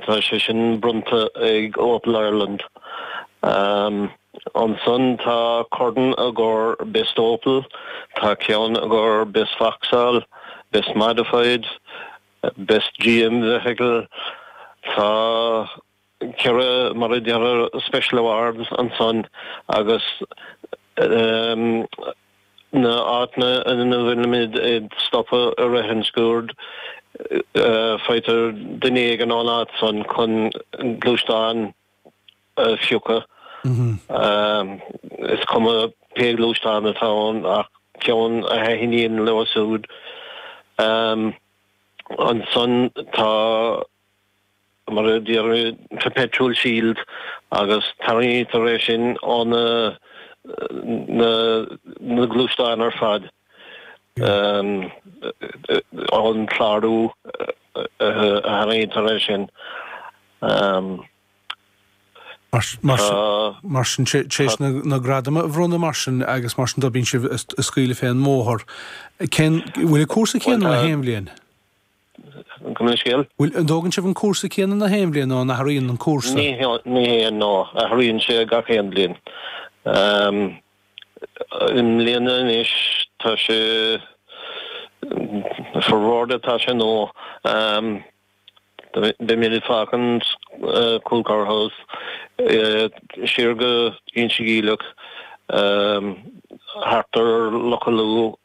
Tá sé sin bronnta ag Opel Ireland. Ansan tá corn i gcomhair Best Opel, tá ceann i gcomhair Best Vauxhall, Best Modified, Best GM Vehicle, tá ceithre, mar a déarfá, Special Awards ansan agus. na áiteanna ina bhfuilimid ag stopadh i rith an sciúird, faightear duine éigin ón áit san chun gluaisteán a phiocadh, is cuma pé gluaisteán atá ann ach ceann a thaithníonn leo súid. Ansan tá. mar a déarfá, perpetual shield, agus tarraingítear é sin ó na na gluaisteáin ar fad ón chlárú a tharraingítear é sin. Mar sin, téis na gradama a bhronnadh mar sin agus mar sin do bíonn siad á scaoileadh fén mbóthar. Bhfuil cúrsa céanna na haon bhliain? Gabh mo leithscéal, an dtógann sibh an cúrsa céanna na haon bhliain nó an athraíonn an cúrsa? No, no, athraíonn sé gach aon bhliain. I mbliana anois tá sé ar bóthar atá sé nó beimid ag fágaint Coolcower House siar go Inse Geimhleach thart ar Loch Allua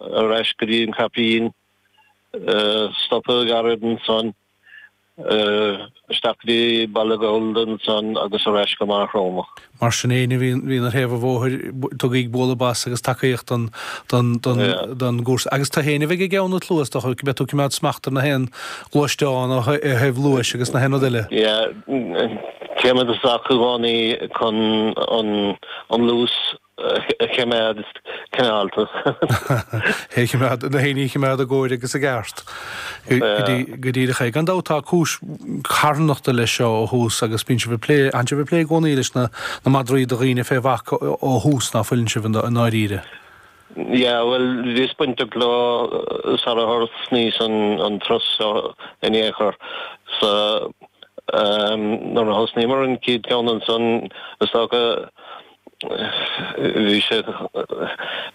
ar ais go dtí an Caipín, stopadh gairid ansan, isteach go dtí Béal an Ghaorthaidh ansan agus ar ais go Maigh Chromtha. Mar sin fhéin, má bhíonn sibh ar thaobh an bhóthair, tugaíg bualadh bos agus tacaíocht don gcúrsa. Agus tú fhéin a bheidh ag ceann an tslua, is dócha, go mbeidh tú ag coimeád smacht ar na haon ghluaisteán ó thaobh luais agus na haon rud eile. Yeah, téim i dtosach i gcónaí chun an luas. a chimeád cineálta. É a chimeád, na haoinne a chimeád i gcóir agus i gceart go dtí do ché. Gan dabht tá cúis carthanachta leis seo ó thús agus bíonn sibh ag plé, tánn sibh ag plé i gcónaí leis na madraí do dhaoine fé bhac ó thús ná fuileann sibh i ndáiríre? Yeah, bhuel, bhíos bainteach leo sara thosnaíos an turas seo in aon chor. So, nuair a thosnaíomar an chéad cheann ansan, is dócha Bhí sé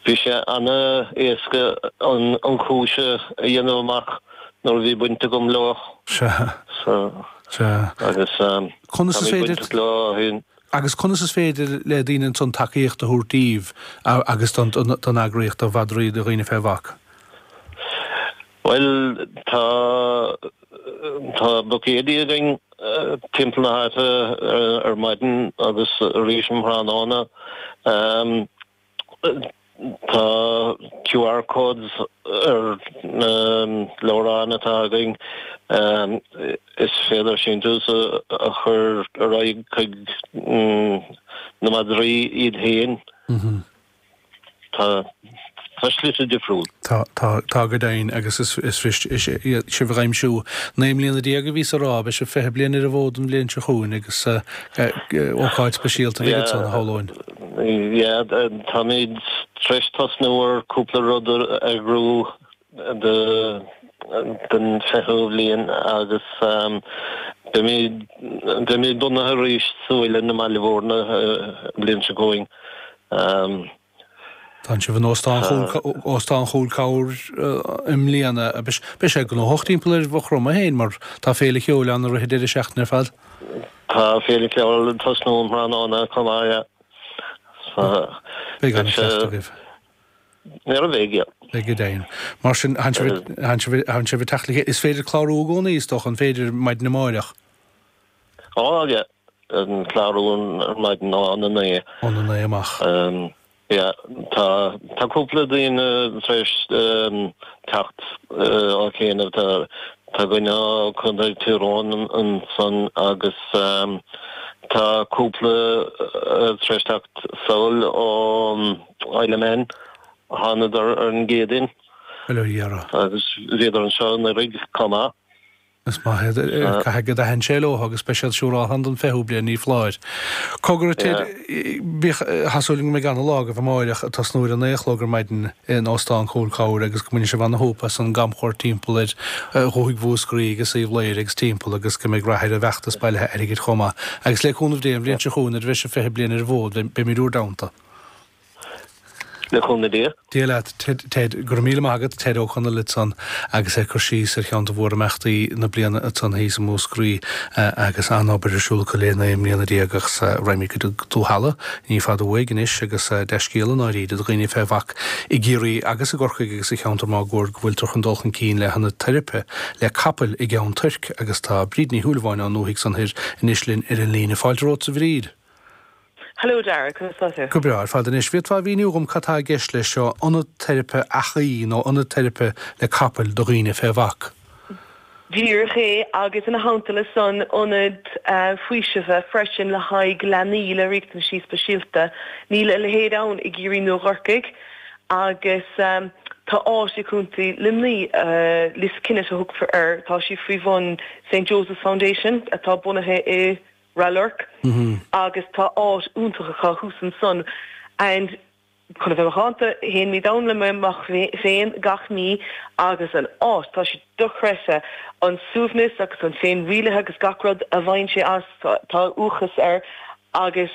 bhí sé ana éasca an an chúis a dhéanamh amach nuair a bhí baint agam leo. Sea. So Sea. agus um, Táimse bainteach leo ó shin. Agus conas is féidir le daoine ansan tacaíocht a thabhairt díbh agus don eagraíocht do mhadraí do dhaoine fé bhac? Bhuel, tá tá buicéidí againn timpeall na háite ar maidin agus arís um thráthnóna. Tá QR codes ar na leabhráin atá againn. Is féidir síntiús a chur ar aghaidh chuig na madraí iad féin. Tá slite difriúla. Tá, tá, tá go deimhin agus is, is mhiste, is é, é, sibh ag aimsiú, naoi mbliana déag a bhíos a rá, beidh sibh fiche bliain ar an bhfód an bhliain seo chugainn agus ócáid speisialta a bheidh ansan, shamhlóinn. Yeah, yeah, táimid tar éis tosnú ar cúpla rud a eagrú don 20ú bliain agus beimid bunaithe arís sa Mhuileann i mBaile Mhúirne an bhliain seo chugainn. Tánn sibh in Óstán Chúil Cabhair i mbliana. Beidh sé gnóthach timpeall ar Mhaigh Chromtha féin mar tá Féile Cheoil ann i rith an deireadh seachtaine ar fad. Tá Féile Cheoil ag tosnú um thráthnóna chomh maith. Beidh an-fheisteas agaibh. Nuair a bheidh iad. Go deimhin. Mar sin, tánn sibh ag, tánn sibh, tánn sibh ag teacht le chéile. Is féidir clárú i gcónaí, is dócha, an féidir, maidin amáireach? Á, aye, an clárú ar maidin ó na naoi. Ó na naoi amach. Yeah, tá, tá cúpla daoine tar éis teacht cheana. Tá, tá duine ó Chontae Thír Eoghain ansan agus tá cúpla tar éis teacht sall ó. Isle of Man. Thánadar ar an gCéadaoin. Bhuel, ar iarraidh. Agus bhíodar anseo anuraidh chomh maith. Is maith iad. Caithfidh go dtaithneann sé leo agus beidh siad siúráilte ann don 20ú bliain ní foláir. Cogar Ted, tá súil agam go mbeidh ana lá agaibh amáireach ag tosnú ar a naoi a chlog ar maidin in Óstán Chúil Cabhair agus go mbainfidh sibh ana shúp as an gcamchuairt timpeall ar Dhúthaigh Mhúscraí agus Uíbh Laoire agus timpeall agus go mbeidh rath ar an bhfeachtas bailithe airgid chomh maith. Agus le cúnamh Dé, an bhliain seo chugainn nuair a bheidh sibh 20 bliain ar an bhfód beimid in bhur dteannta. Le cúnamh Dé. Dia leat, Ted. Go raibh míle maith agat, Ted Ó Conaill, ansan agus ag cur síos ar cheann de mhórimeachtaí na bliana ansan thíos i Múscraí agus an-obair ar siúl acu le naoi mbliana déag agus raghaimid go Dúth Ealla ní fada uaidh anois agus dea-scéala, i ndáiríre, do dhaoine fé bhac i gCiarraí agus i gCorcaigh agus sa cheantar máguaird go bhfuiltear chun dul chun cinn le hionad teiripe le capaill i gCeann Toirc agus tá Bríd Ní Shúilleabháin ón ndúthaigh san thoir anois linn ar an líne. Fáilte romhatsa a Bhríd! Hello Dara, conas tá tú? Go breá ar fad anois. Bhféadfá a mhíniú dhom cad tá i gceist leis seo, ionad teiripe eachaí nó ionad teiripe le capaill do dhaoine fé bhac? Díreach é agus ina theannta le san, ionad faoisimh freisin le haghaidh leanaí le riachtanaisí speisialta. Níl a leithéid ann i gCiarraí nó i gCorcaigh agus tá áit i gContae Luimní, Liskennett a thugtar air, tá sé faoi bhun St. Joseph's Foundation atá bunaithe i Ráth Luirc agus tá áit iontach acu thuas ansan and chun a bheith macánta, théimid ann le mo mhac féin gach mí agus an áit, tá sé dochreidte, an suaimhneas agus an féinrialaithe agus gach rud a bhfaigheann sé as, tá uathachas air agus.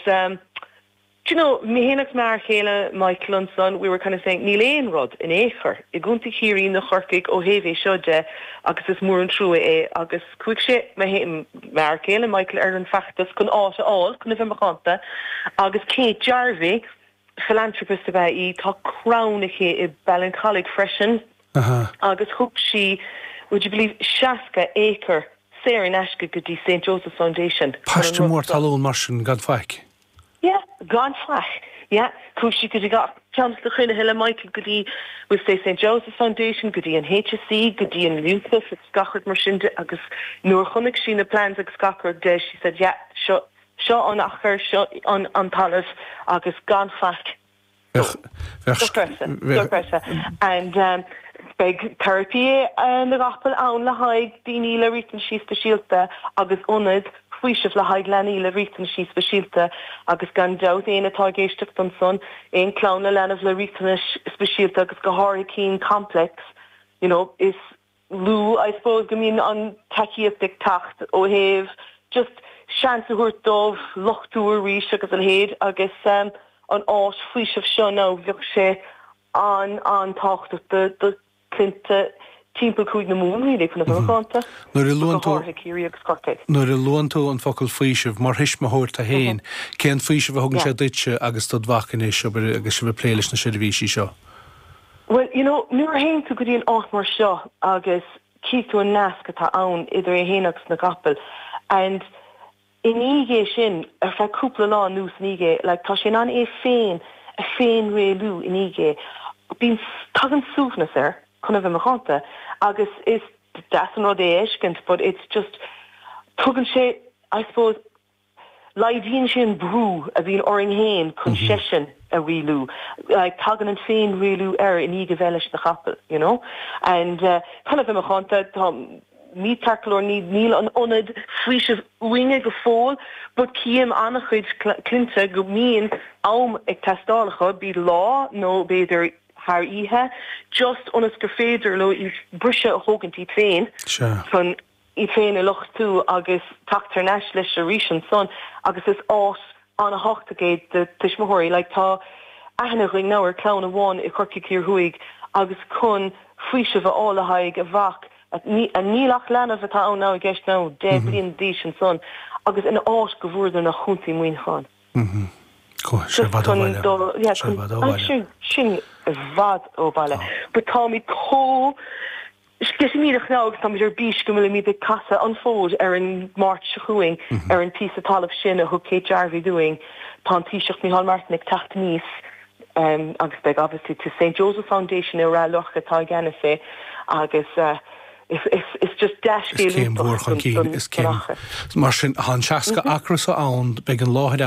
Do you know, mé féin agus m'fhear chéile Michael ansan, we were kind of saying níl aon rud in aon chor i gContae Chiarraí nó Chorcaigh ó thaobh é seo de agus is mór an trua é agus chuaigh sé, m'fhear céile Michael, ar an bhfeachtas chun áit a fháil chun a bheith macánta agus Kate Jarvey, philanthropist ab ea í, tá Crann aici i Ballincollig freisin agus thug sí, would you believe, 60 acre saor in aisce go dtí Saint Joseph's Foundation. Paiste mór talún mar sin gan faic. Yeah, gan faic. Yeah, chuaigh sí go dtí gach ceann de na cruinnithe le Michael, go dtí we'll say St Joseph's Foundation, go dtí an HSE, go dtí an Youthoffice agus gach rud mar sin de agus nuair a chonaic sí na plans agus gach rud de, she said yeah, seo, seo an achar, seo an talamh agus gan faic. Beidh teiripí na gcapall ann le haghaidh daoine le riachtanaisí speisialta agus ionad faoisimh le haghaidh leanaí le riachtanaisí speisialta agus gan dabht éinne atá ag éisteacht ansan, aon clann le leanbh le riachtanais speisialta agus go háirithe cinn complex, you know, is. lú I suppose go mbíonn an tacaíocht ag teacht ó thaobh just seans a thabhairt dóibh luchtú arís agus a leithéid agus an áis faoisimh seo now bheadh sé an- an-tábhachtach do do clainnte timpeall Cúige na Mumhan really chun a bheith macánta go háirithe Ciarraí agus Corcaigh. nuair a luann tú an focal faoiseamh, mar thuismitheoir tú fhéin, cén faoiseamh a thugann sé yeah. duitse agus dod mhac anois, abair agus sibh ag plé leis na seirbhísí seo? Bhuel, you know, nuair a théann tú go dtí an áit mar seo agus chíonn tú an nasc atá ann idir é fhéin agus na gcapaill and i ndiaidh é sin, ar feadh cúpla lá anuas i ndiaidh é, like, tá sé in ann é féin a féinrialú i ndiaidh é. Bíonn, tagann suaimhneas air, chun a bheith macánta, agus is deas an rud é a fheiscint but it's just, tugann sé, I suppose, Laghdaíonn sé an brú a bhíonn orainn féin chun seisean a rialú, tagann an féin-rialú air i ndiaidh a bheith leis na chapaill, you know. And kind of i mo chonta, tá, ní tarrthálaí, ní, níl an ionad faoisimh uainne go fóill but cím ana-chuid cinnte go mbíonn am ag teastáil acu, be it lá nó b'fhéidir thar oíche, just ionas gur féidir leo iad briseadh a thógaint iad féin chun. í féin a luchtú agus teacht thar n-ais leis arís ansan agus is áit ana-thábhachtach é do tuismitheoirí. Like tá aithne againn now ar clann amháin i Corcaigh Thiar Thuaidh agus chun faoiseamh a fháil le haghaidh a mhac a níl ach leanbh atá ann now i gceist now deich bliana d'aois ansan agus an áit go bhfuaireadar ná Chontae Muineacháin just chun do yeah chun sin sin i bhfad ó bhaile but táimid comh Sceitimíneach agus, táimid ar bís go bhfuilimid ag casadh an fód ar an Máirt seo chugainn ar an bpíosa talaimh sin a thug Kate Jarvey dúinn. Tá an Taoiseach Micheál Martin ag teacht aníos agus beidh obviously tis Saint Joseph Foundation i Rath Luirc atá i gceannas é agus is just dea-scéal iontach don Is céim mhór chun cinn. Mar sin, tá an 60 acra seo ann, beidh an láthair ann,